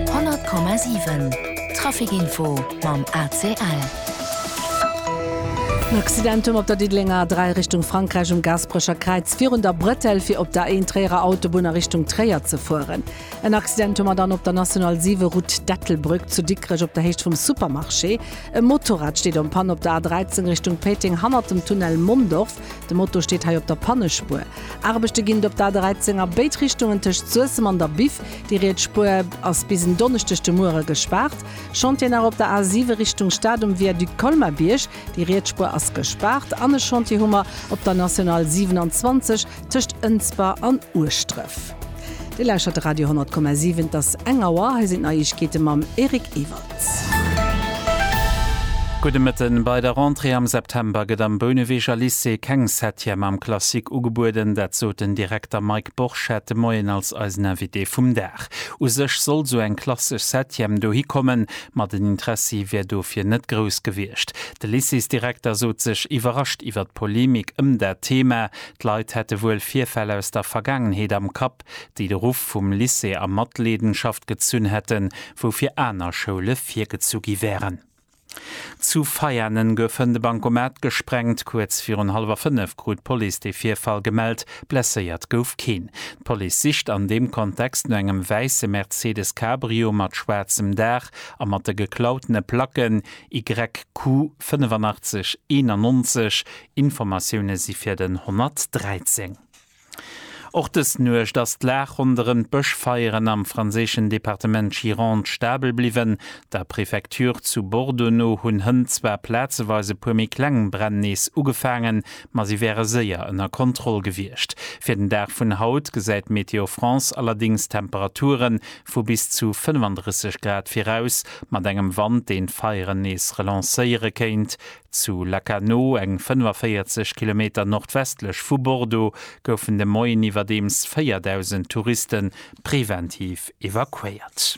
100,7 Traficinfo mam ACL. En Accidentum op der Diddelenger A 3 Richtung Frankräich um Gaasperecher Kräiz virun der Bretelle fir op der Ain-Tréierer Autobunn a Richtung Tréier ze fueren. En Accidentum hat an op der National 7 Route d'Ettelbrück zu Dikrech op der Héicht vum Supermarché. E Motorrad steet en Panne op der A 13 Richtung Péiteng hannert dem Tunnel Mondorf. De Moto steet hei op der Pannespuer. Aarbechte ginn op der A 13 a béid Richtungen tëscht Suessem an der Biff. Déi riets Spuer ass bis en Donneschdeg de Muere gespaart. Chantieren nach op der A 7 Richtung Stad um Viaduc Colmar-Bierg. Déi riets Spuer ass gespaart. An e Chantier hu mer op der National 27 tëscht Ënsber an Ueschdref. Dir lauschtert de Radio 10,7, et ass eng Auer. Hei sinn d'Neiegkeete mam Eric Ewalds. Gudde Mëtten. Bei der Rentrée am September gëtt am Bouneweger Lycée keng Septième am Classique ugebueden. Dat sot den Direkter Mike Borchert de Moien als eisen Invité vum Dag. U sech sollt sou eng klassesch Septième dohi kommen, ma den Interessi wär dofir net grouss gewiescht. De Lycéesdirekter sot sech iwwerrascht iwwer d'Polemik ëm dat Thema. D'Leit hätte wuel Virfäll aus der Vergaangenheet am Kapp, déi de Ruff vum Lycée a Matleedenschaft gezunn hätten, wou fir aner Schoule virgezu gi wären. Zu Veianen gouf hënt e Bankomat gesprengt. Kuerz virun hallwer fënnef krut d'Police de Virfall gemellt. Blesséiert gouf keen. D'Police sicht an deem Kontext no engem wäisse Mercedes Cabrio mat schwaarzem Daach a mat de geklautene Placken YQ 85 91 Informatioune si fir den 113. Och dës Nuecht ass d'Lag ronderëm d'Bëschfeieren am franséischen Departement Gironde stabel bliwwen. Der Prefecture zu Bordeaux no hunn Hënn zwar plazeweis e puer méi kleng Bränn nees ugefaangen, ma si wäre séier ënner Kontroll gewiescht. Fir den Dag vun haut gesäit Météo France allerdéngs Temperature vu bis zu 35 Grad viraus, mat engem Wand, deen d'Feieren nees relancéiere kéint. Zu Lacanau, eng 45 Kilometer nordwestlech vu Bordeaux, goufen de Moien iwwerdeems 4.000 Touriste preventiv evakuéiert.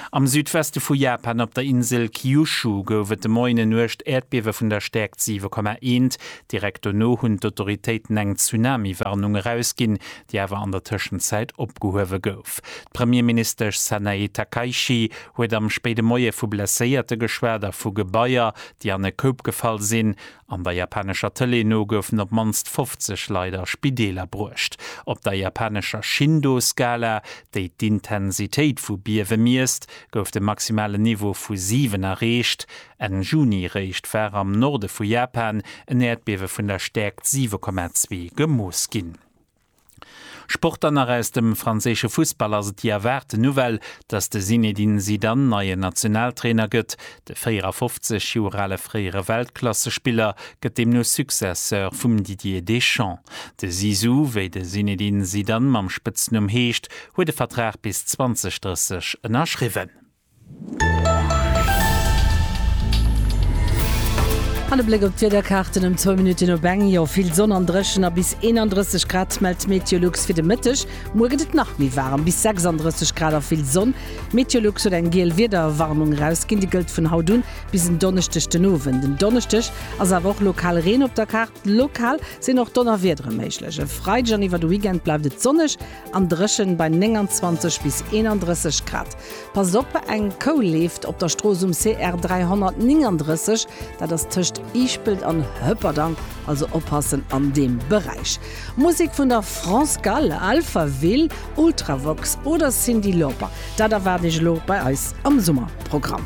Am Südweste vu Japan, op der Insel Kyushu, gouf et de Moien e Nuecht-Äerdbiewe vun der Stäerkt 7,1. Direkt dono hunn d'Autoritéiten eng Tsunami-Warnung erausginn, déi awer an der Tëschenzäit opgehuewe gouf. D'Premierministesch Sanae Takaichi huet am spéide Moie vu Blesséierte geschwat a vu Gebaier, déi an e Koup gefall sinn. An der japanescher Tëlee no goufen op d'mannst 50 Leit a Spideeler bruecht. Op der japanescher Shindo-Skala, déi d'Intensitéit vu Biewe miesst, gouf de maximalen Niveau vu 7 erreecht. Enn Juni eréischt war am Norde vu Japan en Äerdbiewe vun der Stäerkt 7,2 gemooss ginn. Sport Dann nach aus dem franséische Fussball ass et déi erwaarten Nouvelle, dass de Zinedine Zidane neien Nationaltrainer gëtt. De 54 Joer ale fréiere Weltklassespiller gëtt deemno Successeur vum Didier Deschamps. De Zizou, wéi de Zinedine Zidane mam Spëtznumm heescht, huet e Vertrag bis 2030 ënnerschriwwen. An e Bléck op d'Wiederkaarten ëm zwou Minutten op eng. Jo, vill Sonn an dréchen a bis 31 Grad mellt d'Meteolux fir de Mëtteg. Muer gëtt et nach méi waarem, bis 36 Grad a vill Sonn. D'Meteolux huet eng giel Wiederwarnung erausginn, déi gëllt vun haut un bis en Donneschdeg den Owend. En Donneschdeg ass awer och lokal Reen op der Kaart. Lokal sinn och Donnerwiedere méiglech. E Freideg an iwwer de Weekend bleift et sonneg An dréchen bei 29 bis 31 Grad. Passt op, eng Kou leeft op der Strooss um CR 339, dat ass tëscht Iichpelt an Hëpperdang, also oppassen an deem Beräich. Musek vun der France Gall, Alphaville, Ultravox oder Cyndi Lauper, dat erwaart iech elo bei eis am Summerprogramm.